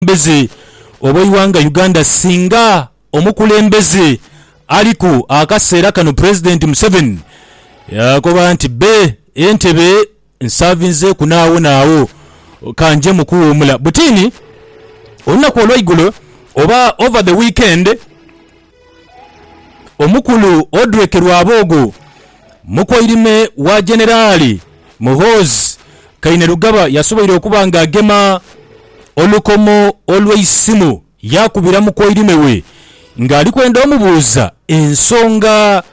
obukulembeze obw'eighanga Uganda singa omukulembeze aliku akaseera kano Pulezidenti Museveni yaakoba nti bbe e ntebe nsaavinzeeku n'agho n'agho ka nje mu kuwuumula. Butini olunaku olwaigulo oba over the weekend, Omukulu Odrek Rwaboogo, mukoirime wa Generali Muhoozi Kainerugaba yasoboire okuba nga agema olukomo olw'eisimu yaakubira mukoirime we ng'ali kwenda omubuuza ensonga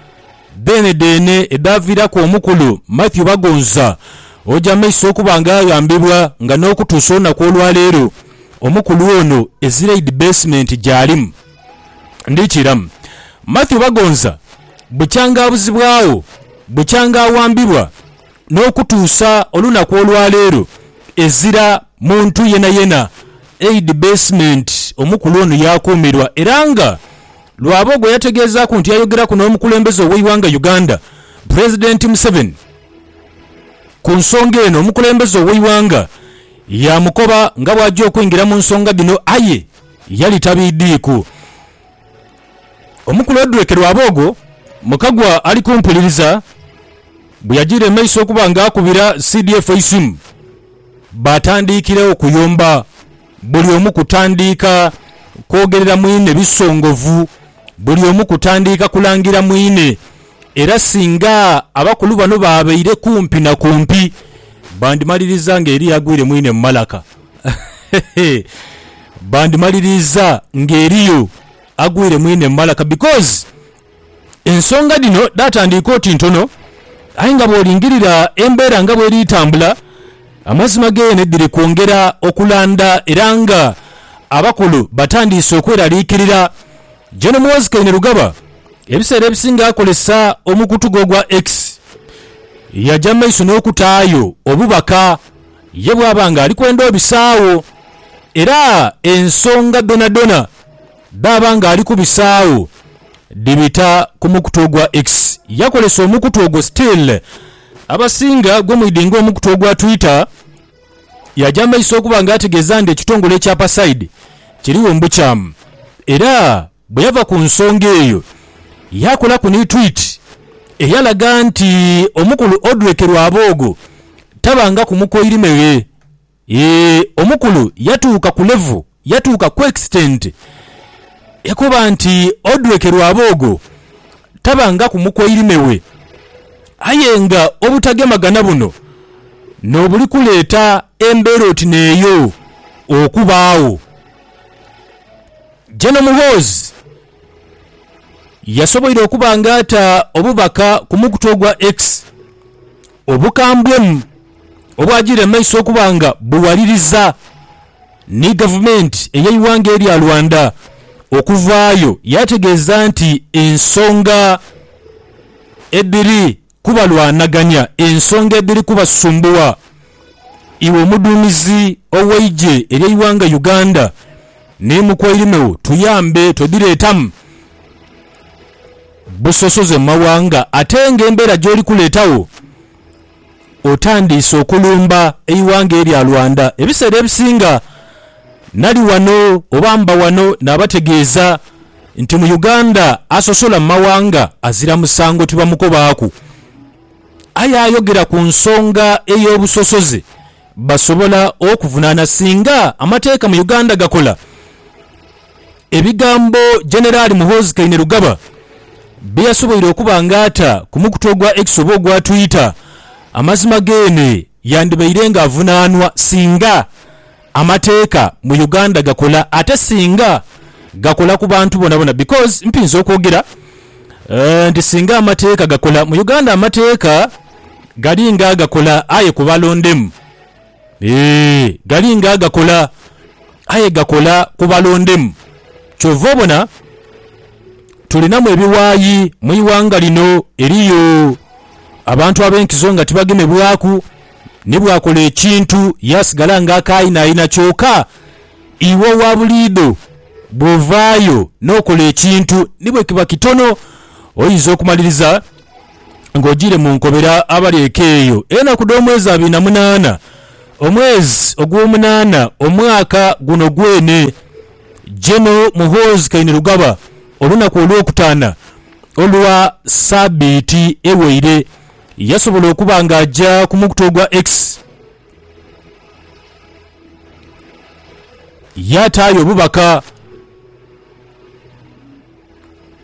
dheenedheene edhaaviiraku omukulu Mathew Bagonza oja amaiso okuba nga aghambibwa nga n'okutuusa olunaku olwaleero omukulu ono ezira idi beesimenti gy'alimu. Ndhikiiramu. Mathew Bagonza bukyanga abuzibwagho, bukyanga awambibwa n'okutuusa olunaku olwaleero ezira muntu yenayena. Eid Basement omukulu ono yaakuumirwa era nga lw'abo gwe yategeezaaku nti yayogeraku n'omukulembeze ow'eighanga Uganda, Pulezidenti Museveni ku nsonga eno. Omukulembeze ow'eighanga yaamukoba nga bw'aja okwingira mu nsonga dhino aye, Yali tabiidhiiku. Omu ku Lodrek Rwaboogo, mu Kagwa ali kumpuliriza, bwe yajiire mu maiso okuba nga akubira CDF eisimu, baatandiikiregho kuyomba, buli omu kutandiika kwogerera mwine bisongovu, buli omu kutandiika kulangira mwine. Era singa abakulu bano baabaire kumpi na kumpi, bandimaliriza ng'eriyo agwire mwine mu malaka. Bandimaliriiza ng'eriyo agwire mu inhe mu malaka because ensonga dhino dhaatandiika oti ntono aye nga bw'olingirira embeera nga bw'eri tambula, amazima geene dhiri kwongera okulanda era nga abakulu batandiise okweraliikirira. Gen Muhoozi Kainerugaba ebiseera ebisinga akozesa omukutu gwe ogwa X yaja mu maiso n'okutaayo obubaka Ye bw'aba ng'ali kwenda obisaagho, era ensonga dhonadhona dh'aba ng'ali kubisaagho dhibita ku mukutu ogwa X, yakolesa omukutu ogwo still abasinga gwemwidhi nga omukutu ogwa Twitter, yaaja mu maiso okuba nga ategeeza nti ekitongole ekya Pasaide kirigho mu bukyamu era Bwe yava ku nsonga eyo, yaakolaku ni twiiti eyalaga nti omukulu Odrek Rwaboogo tabangaku mukoirime ghe. Eeh omukulu yatuuka ku level, yatuuka ku extent yakoba nti Odrek Rwaboogo tabangaku mukoirime we. Aye nga obutagemagana buno n'obuli kuleeta embeera oti n'eyo okubaagho. Gen Muhoozi yasoboire okuba nga ata obubaka ku mukutu ogwa X obukambwemu obwagiire mu maiso okuba nga buwaliriza ni gavumenti ey'eighanga erya Rwanda okuvaayo yaategeeza nti ensonga edhiri kubalwanagania ensonga edhiri kubasumbuwa. Iwe omuduumizi ow'eigye ery'eighanga Uganda ni mukwairime wo tuyambe twedhireetamu busosoze mu mawanga ate nga embeera gy'oli kuleetagho otandiise okulumba eighanga erya Rwanda. Ebiseera ebisinga nali wano oba mba wano naabategeeza. Nti mu Uganda asosola mu mawanga azira musango tibamukobaaku. Aye ayogera ku nsonga ey'obusosoze basobola okuvunaana singa amateeka mu Uganda gakola. Ebigambo Generali Muhoozi Kainerugaba bye yasoboire okuba nga ata ku mukutu ogwa X oba ogwa Twitter, amazima geene yandibaire nga avunaanwa singa. Amateeka mu Uganda gakola ate singa gakola ku bantu bonabona because mpinza okwogera nti singa amateeka gakola mu Uganda amateeka galinga agakola aye ku balondemu eeh galinga agakola aye gakola ku balondemu kyova obona tulinamu ebiwayi mwiwanga lino eriyo abantu abenkizo nga tibagemebwaku. ni bw'akola ekintu yaasigala ng'akaayinayina. Kyoka iwe owa buliidho bw'ovaayo n'okola ekintu ni bwe kiba kitono, oinza okumaliriza ng'ojiire mu nkobera abali eka eyo. Enaku dh'omwezi abiri na munaana, omwezi ogw'omunaana omwaka guno gwene, Gen. Muhoozi Kainerugaba, olunaku Olwokutaana olwa saabiiti eweire, yasobola okuba nga aja ku mukutu ogwa X yaataayo obubaka.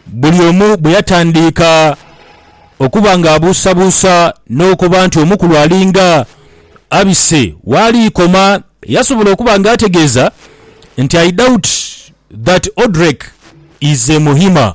Buli omu bwe yatandiika okuba nga abuusabuusa n'okoba nti omukulu alinga abise waaliikoma, yasobola okuba nga ategeeza nti, I doubt that Odrek is a Muhima.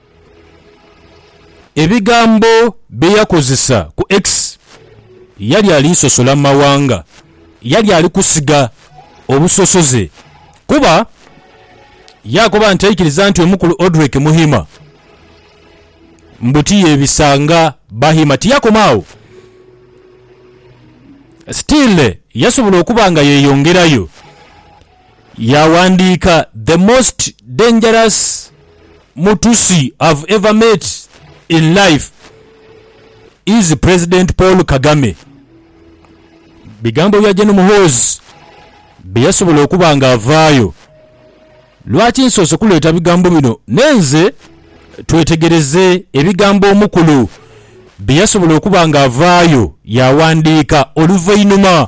Ebigambo bye yakozesa ku X, Yali ali sosola mu mawanga. Yali ali kusiga obusosoze kuba yaakoba nti aikiriza nti omukulu Odrek Muhima mbu tiyebisa nga Bahima. Tiyakoma agho, still yasobola okuba nga yeyongerayo. Yaghandiika, The most dangerous Mutusi I've ever met in life is President Paul Kagame. Bigambo bya Gen Muhoozi bye yasobola okuba nga avaayo. Lwaki nsoose kuleeta bigambo bino nenze? Twetegereze ebigambo omukulu bye yasobola okuba nga avaayo yaghandiika oluvainhuma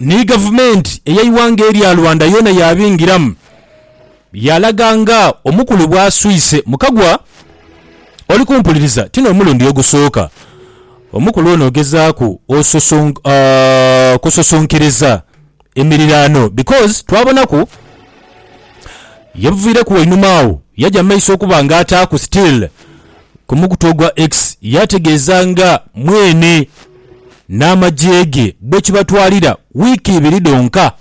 Ni gavumenti ey'eighanga erya Rwanda yoona yaabingiramu, yaalaga nga omukulu bw'aswise mu kagwa. Oli kumpuliriza, ti n'omulundi ogusooka omukulu ono ogezaaku okususunkiiriza emiriraano because twabonaku yabuviireku wainuma agho yaja mu maiso okuba nga ataaku still. ku mukutu ogwa X yaategeeza nga mwene n'amagye ge bwe kibatwalira wiiki ibiri dhonka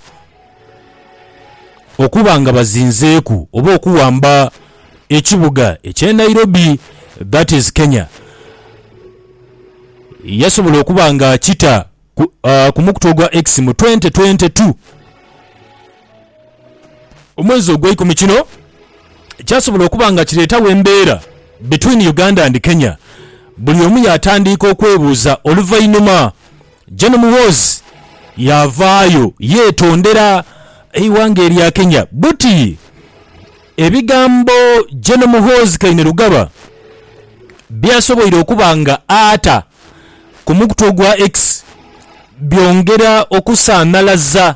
okuba nga bazinzeeku oba okuwamba ekibuga eky'e Nairobi that is Kenya yasobola okuba ng'akita. ku, ah, ku mukutu ogwa X mu 2022 omwezi ogweikumi kino kyasobola okuba nga kireetawo embeera between Uganda and Kenya buli omu yaatandiika okwebuuza oluvainhuma Gen Muhoozi yaavaayo yeetondera eighanga erya Kenya buti ebigambo Gen Muhoozi Kainerugaba byasoboire okuba nga ata ku mukutu ogwa X byongera okusanhalaza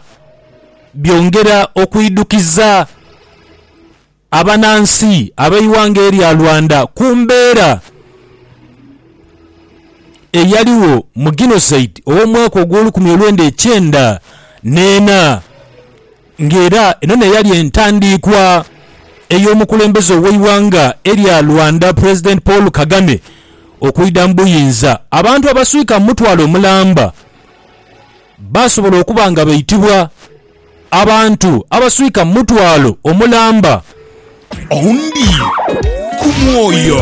byongera okwidhukiza abanansi ab'eighanga erya Rwanda ku mbeera eyaligho mu Genocide ow'omwaka ogw'olukumi olwenda ekyenda n'ena. nga era eno n'eyali entandiikwa ey'omukulembeze ow'eighanga erya Rwanda President Paul Kagame okwidha mu buyinza, abantu abaswika mu mutwalo omulamba baasobola okuba nga baitibwa Abantu abaswika mu mutwalo omulamba. Oundii ku mwoyo.